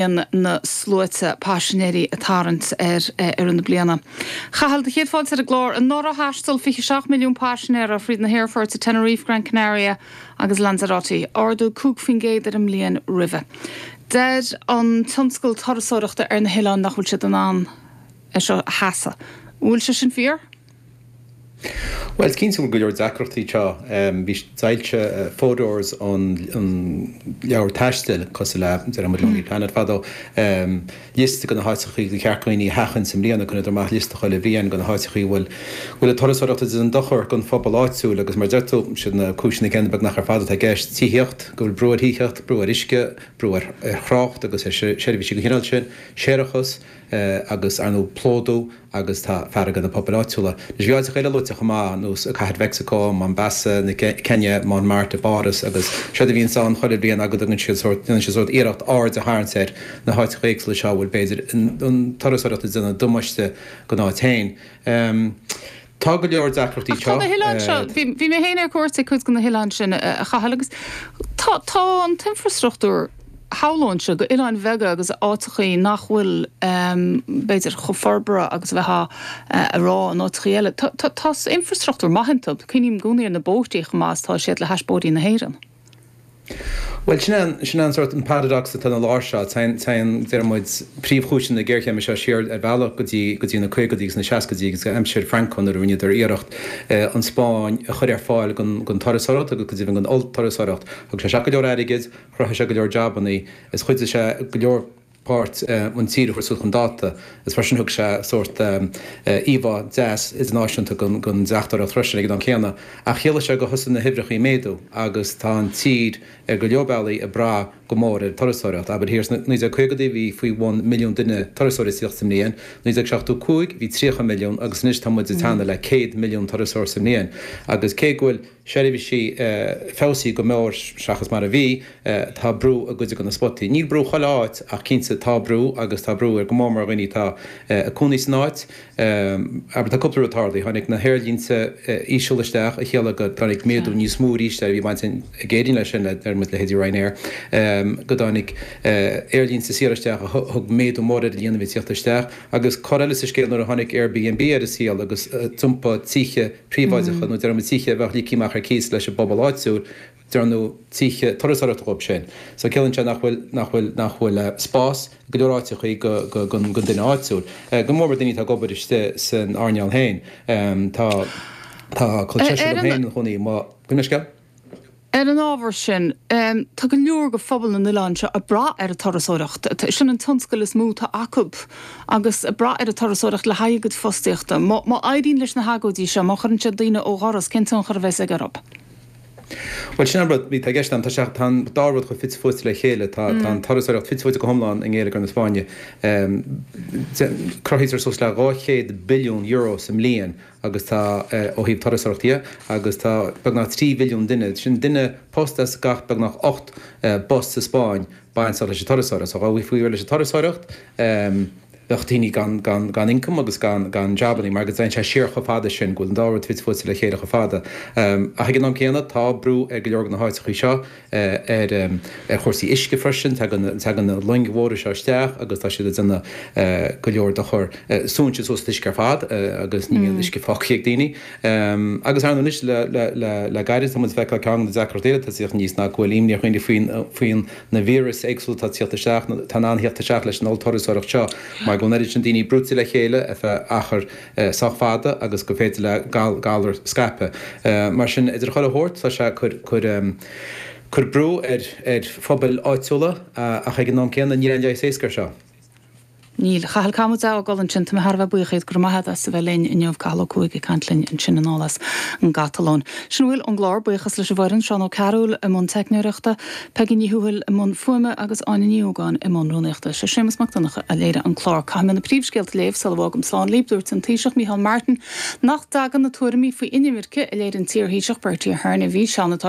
líon na sluaite paisinéirí ag tarraingt ar feadh na bliana. A Chathail, céad fáilte ar an gclár. Anuraidh thaisteal 27 milliún paisinéir thríd na haerfoirt i Tenerife, Gran Canaria agus Lanzarote, ardú 5 faoin gcéad ar an mbliain roimhe. Deir an tionscal turasóireachta ar na hoileáin nach bhfuil siad in ann é seo a sheasamh. An bhfuil sé sin fíor? Bhuel, is cinnte go bhfuil go leor deacrachtaí iontu. Bhí, d'fhoilsigh Fodor's an leabhar taistil, cosúil le, déarfaidh muid Lonely Planet fadó, liosta de na háiteacha ar cheart go dhaoine a sheachaint i mbliana, cuireann siad amach liosta chuile bhliain de na háiteacha a bhfuil an turasóireacht ag déanamh an-dochar don phobal áitiúil agus mar a deir tú, siad na cúiseanna céanna beagnach ar fad atá i gceist, tithíocht, go bhfuil brú ar thithíocht, brú ar uisce, brú ar thrácht agus ar seirbhísí den chineál sin, séarachas. agus ar ndóigh plódú agus tá fearg ar na pobail áitiúla. Anois bhí áiteacha eile luaite chomh maith ar nós Cathair Mhexico, Mombasa na Céinia, Montmartre i bPáras agus sé an, bíonn sé ann chuile bhliain agus déanann siad sórt déanann siad sórt iarracht aird a tharraingt ar na háiteacha éagsúla seo a bhfuil b'fhéidir an turasóireacht ag déanamh damáiste don áit féin. Tá go leor deacrachtaí iontu. Ach tá na hoileáin seo, bhí mé féin ar cuairt ag cuid de na hoileáin sin, a Chathail, agus tá, tá an t-infreastruchtúr, shamhlóinnse, d'oileáin bheaga agus áiteachaí nach bhfuil, b'fhéidir, chomh forbartha agus a bheadh, abair, in áiteachaí eile, tá, tá, tá infreastruchtúr maith iontu. Cuimhním i gcónaí ar na bóithrí, chomh maith is atá siad le hais bóithrí na hÉireann. Bhuel, sin é an, sin é an sórt, an paradox atá ina lár seo. Téann, téann, déarfaidh muid, príomhchúiseanna na géarchéime seo siar ar bhealach go dtí, go dtí na caogaidí agus na seascaidí agus aimsir Franco nuair a rinneadar iarracht an Spáinn a chur ar fáil don, don turasóireacht agus go deimhin don ollturasóireacht. Thug sé isteach go leor airgid, chruthaigh sé go leor jabanna is chuidigh sé go leor, páirt an tír a chur suas chun dáta, agus mar sin thug sé sórt íomhá deas idirnáisiúnta den deachtóireacht freisin ag an am céanna. Ach chiallaigh sé gur thosaigh na huimhreacha ag méadú agus tá an tír ar go leor bealaí ag brath go mór ar an turasóireacht. Abair thiar i 1950 bhí faoi bhun milliún duine, turasóirí sa mbliain, 1975 bhí 30 milliún agus anois tá muid ag teannadh le 100 milliún turasóir sa mbliain. Agus cé go bhfuil. seirbhísí feabhsaithe go mór seachas mar a bhí, tá brú i gcuid de na spotaí. Níl brú chuile áit ach cinnte tá brú agus tá brú ar go mór mór dhaoine atá ag cónaí san áit. Abair tá cúpla rud a tharla, tháinig na haerlínte íseal isteach a chiallaigh go dtáinig méadú níos mó arís air, bhí baint ag Éirinn leis sin, leithéidí Ryanair, go dtáinig aerlínte saoire isteach a thug méadú mór ar an líon a bhí ag tíocht isteach. Agus cor eile sa scéal nuair a tháinig Airbnb ar an saol agus d'iompaigh tithe, príobháideacha nó dearnadh tithe a bheadh ligthe amach ar cíos leis an bpobal áitiúil, dearnadh tithe turasóireachta dhóibh sin. So ciallaíonn sé nach bhfuil, nach bhfuil, nach bhfuil spás i go leor áiteachaí go, go, gon, gon duine áitiúil. Go mórmhór daoine atá ag obair istigh san earnáil féin. Tá, tá, tá col seisir agam féin ina chónaí, má chuimhním an scéal Ar an ábhar sin, tá go leor de phobal na n-oileán seo ag brath ar an turasóireacht, sin an tionscal is mó atá acu, agus ag brath ar an turasóireacht le haghaidh a gcuid fostaíochta. Má éiríonn leis na hagóidí seo, má chuireann siad daoine ó dhoras, cén tionchar a bheas aige orthu? Bhuel, sin an rud a bhí i gceist agam. Tá an dá rud chomh fite fuaite le chéile. Tá an turasóireacht fite fuaite go hiomlán i ngeilleagar na Spáinne. Cruthaítear suas le €200 billiún sa mbliain agus tá ó thaobh turasóireacht dhe, agus tá beagnach trí mhilliún duine, sin duine post as gach beagnach ocht bpost sa Spáinn, bainteach leis an turasóireacht. So dhá bhfaighfí réidh leis an turasóireacht, bheadh daoine gan income agus gan jabannaí, mar go dtéann sé siar chomh fada sin, go bhfuil an dá rud fite fuaite le chéile chomh fada. Ach ag an am céanna, tá brú ar go leor de na háiteachaí seo, ar chúrsaí uisce freisin. Tagann na longa móra seo isteach agus tá siad ag déanamh go leor dochar, súnn siad suas an t-uisce ar fad agus ní bhíonn uisce fágtha ag daoine. Agus ar ndóigh anois le gairid, tá muid ag feiceáil ceann de na deacrachtaí eile atá ag tíocht aníos ná go bhfuil imní ar dhaoine faoi na víreas éagsúla atá ag tíocht isteach, atá in ann thíocht isteach leis an ollturasóireacht seo mar go bhfuil an oiread sin daoine brúite le chéile ar feadh achair sách fada agus gur féidir le galar scaipeadh mar sin idir chuile shórt tá sé ag cur brú ar phobail áitiúla ach ag an am céanna níl aon leigheas éasca air seo. Níl. Cathal, caithfidh muid é a fhágáil ansin. Tá mé thar a bheith buíoch díot. Go raibh maith agat as a bheith linn inniu. Cathal Ó Cuaig ag caint linn ansin anall as an gCatalóin. Sin a bhfuil ón gclár. Buíochas leis an bhfoireann, Seán Ó Cearúil i mbun teicneoireachta, Peigí Ní Thuathail i mbun fuaime agus Áine Ní Ógáin i mbun rúnaíochta. Is é Séamus Mac Donncha a léirigh an clár. Caithfidh mé na príomhscéalta a léamh sula bhfágaim slán libh. Dúirt an Taoiseach Micheál Martin nach dtagann na tuairimí faoi inimirce a léirigh an t-iarThaoiseach Bertie Ahern i bhfíseán atá